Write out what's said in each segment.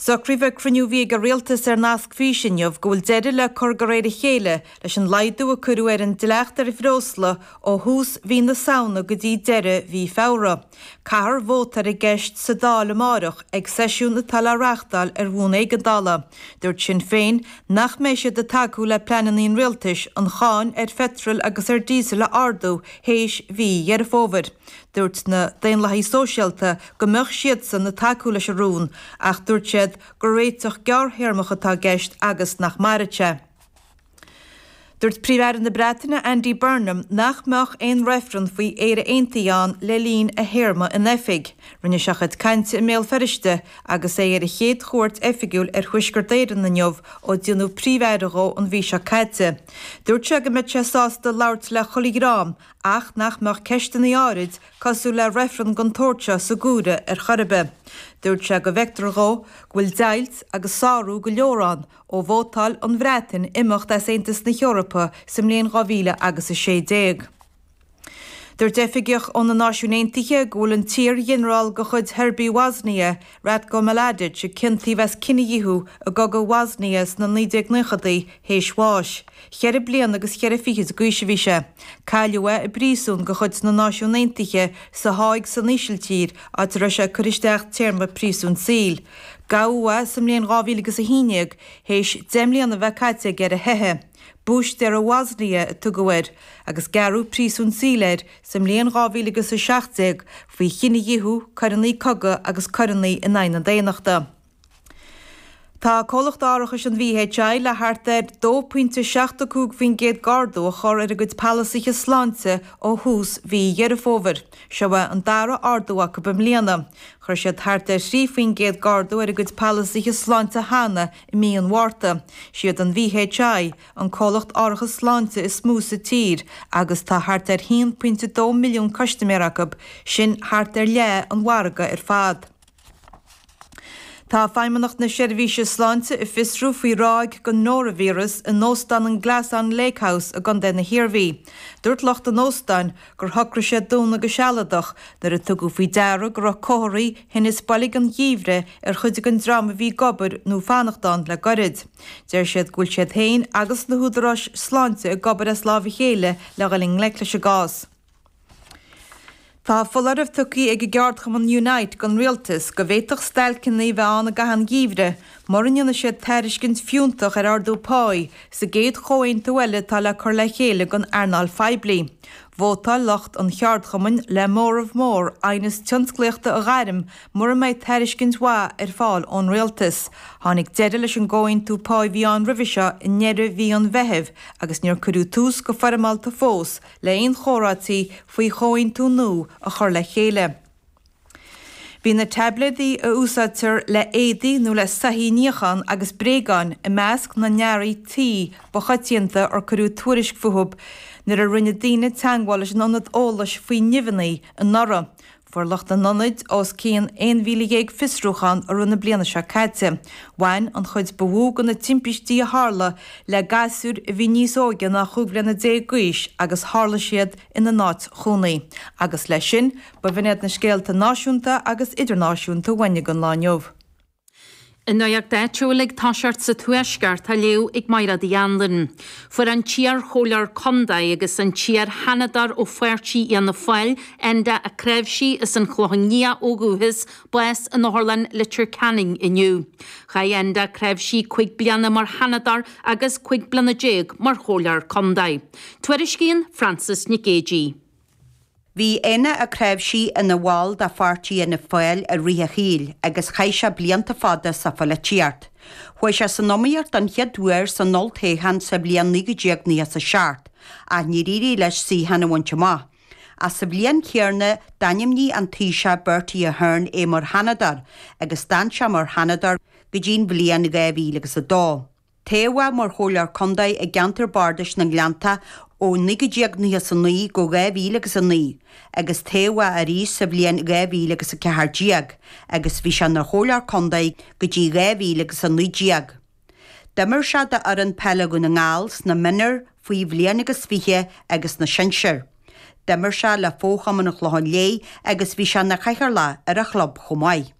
Socraíodh ag cruinniú a bhí ag an Rialtas ar nasc fís inniu go bhfuil deireadh le cur de réir a chéile leis an laghdú a cuireadh ar an dleacht ar bhreosla ó thús mhí na Samhna go dtí deireadh mhí Feabhra. Caithfear vóta ar an gceist sa Dáil amárach ag seisiún atá le reáchtáil ar bhonn éigeandála. Dúirt Sinn Féin nach mbeidh siad ag tacú le pleananna an Rialtais an cháin ar pheitreal agus ar dhíosail a ardú théis mhí Dheireadh Fómhair. Dúirt na Daonlathaigh Sóisialta go mbeadh siadsan ag tacú leis an rún ach dúirt siad gur réiteach gearrthéarmach atá i gceist agus nach mairfidh sé. Dúirt Príomh-Aire na Breataine Andy Burnham nach mbeadh aon reifreann faoi Éire Aontaithe ann le linn a théarma in oifig. Rinne sé a chuid cainte i mBéal Feirste agus é ar a chéad chuairt oifigiúil ar Thuaisceart Éireann inniu ó déanadh Príomh-Aire dhó an mhí seo caite. Dúirt sé go mbeadh sé sásta labhairt le chuile dhream ach nach mbeadh ceisteanna áirid cosúil le reifreann den tsórt seo sa gcúlra ar chor ar bith. Dúirt sé go bhfeictear dhó go bhfuil deighilt agus sárú go leor ann ó vótáil an Bhreatain imeacht as Aontas na hEorpa sa mbliain dhá mhíle agus a sé déag. Dúirt oifigeach ó na Náisiúin Aontaithe go bhfuil an t-iar-ghinearál de chuid Sheirbigh Bhoisnia, Ratko Mladic a ciontaíodh as cinedhíothú i gCogadh Bhoisnia sna 1990idí théis bháis. Cheithre bliana agus cheithre fichid d'aois a bhí sé. Cailleadh é i bpríosún de chuid na Náisiún Aontaithe sa Háig san Ísiltír áit a raibh sé ag cur isteach téarma príosúin saoil. Gabhadh é sa mbliain 2011 théis deich mbliana a bheith caite aige ar a theitheadh. Búistéir Bhoisnia a tugadh air agus gearradh príosún saoil air sa mbliain dhá mhíle agus a seacht déag faoi chinedhíothú, coireanna cogaidh agus coireanna in aghaidh na daonnachta. Tá Comhlacht Árachais an VHI le thart ar dó pointe seacht a cúig faoin gcéad d'ardú a chur ar a gcuid palasaithe sláinte ó thús mhí Dheireadh Fómhair. Seo é an dara ardú acu i mbliana. Chuir siad thart ar thrí faoin gcéad d'ardú ar a gcuid palasaithe sláinte cheana i mí an Mhárta. Siad an VHI an comhlacht árachais sláinte is mó sa tír agus tá thart ar 1.2 milliún custaiméir acu, sin thart ar leath an mhargaidh ar fad. Tá Feidhmeannacht na Seirbhíse Sláinte ag fiosrú faoi ráig den noraivíreas in Óstán an Glasson Lake House i gcontae na hIarmhí. Dúirt lucht an óstáin gur shocraigh siad dúnadh go sealadach nuair a tugadh faoi deara go raibh comharthaí thinnis boilg an gheimhridh ar chuid den dream a bhí ag obair nó ag fanacht ann le gairid. Deir siad go bhfuil siad féin agus na húdaráis sláinte ag obair as lámh a chéile le dhul i ngleic leis an gcás. Tá foláireamh tugtha ag an gceardchumann Unite don rialtas go bhféadfadh stailceanna a bheith ann i gcaitheamh an gheimhridh mura ndéanfaidh siad tairiscint fiúntach ar ardú páí sa gcéad chomhaontú eile atá le cur le chéile don earnáil phoiblí. Vótáil lucht an cheardchumainn le móramh mór aighneas tionsclaíochta a ghairm Mura mbeidh tairiscint mhaith ar fáil ón rialtas, tháinig deireadh leis an gcomhaontú páigh a bhí ann roimhe seo i ndeireadh mhí an Mheithimh agus níor cuireadh tús go foirmeálta fós le haon chomhráití faoi chomhaontú nua a chur le chéile. Bhí na taibléadaí a úsáidtear le éadaí nó le soithí a níochán agus bréagáin i measc na n-earraí tí ba choitianta ar cuireadh tuairisc fúthu nuair a rinne daoine teagmháil leis an ionad eolais faoi nimheanna anuraidh. Fuair lucht an ionaid os cionn 11,000 fiosrúchán i rith na bliana seo caite. Bhain an chuid ba mhó de na timpistí a tharla le gasúir a bhí níos óige ná chúig bhliana déag d'aois agus tharla siad ina n-áit chónaí agus, leis sin, ba bh'in iad na scéalta náisiúnta agus idirnáisiúnta a bhain ag an lá inniu. An nuacht áitiúil ag toiseacht sa Tuaisceart, á léamh ag Máiréad Uí Anluain. Fuair an t-iarchomhairleoir contae agus an t-iarsheanadóir ó pháirtí Fhianna Fáil, Enda Ó Cnáimhsí as an Chlochán Liath ó dhúchas, bás in Otharlann Leitir Ceanainn inniu. Chaith Enda Ó Cnáimhsí cúig bliana mar sheanadóir agus cúig bliana déag mar chomhairleoir contae. Tuairiscíonn Frances Nic Géadaigh. Bhí Éanna Ó Cnáimhsí ina bhall de pháirtí Fhianna Fáil i rith a shaoil agus chaith sé blianta fada sa pholaitíocht. Chuaigh sé san iomaíocht don chéad uair san olltoghchán sa bhliain 1997 ach níor éirigh leis suíochán a bhaint amach. Ach sa bhliain chéarna d'ainmnigh an Taoiseach Bertie Ahern é mar Sheanadóir agus d'fhan sé mar Sheanadóir go dtí'n bhliain 2002. Toghadh é mar Chomhairleoir Contae i gceantar Bardais na nGleanntach ó 1999 go 2000 agus 9, agus toghadh é arís sa bhliain 2000 agus 14, agus bhí sé ina Chomhairleoir Contae go dtí 2000 agus 19. D'imir sé d'fhoireann peile Dhún na nGall sna mionúir, faoi bhliain agus fiche agus sna sinsir. D'imir sé le fochumann an Chlocháin Léith agus bhí sé ina chathaoirleach ar a chlub chomh maith.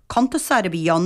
Cuntasóir a bhí ann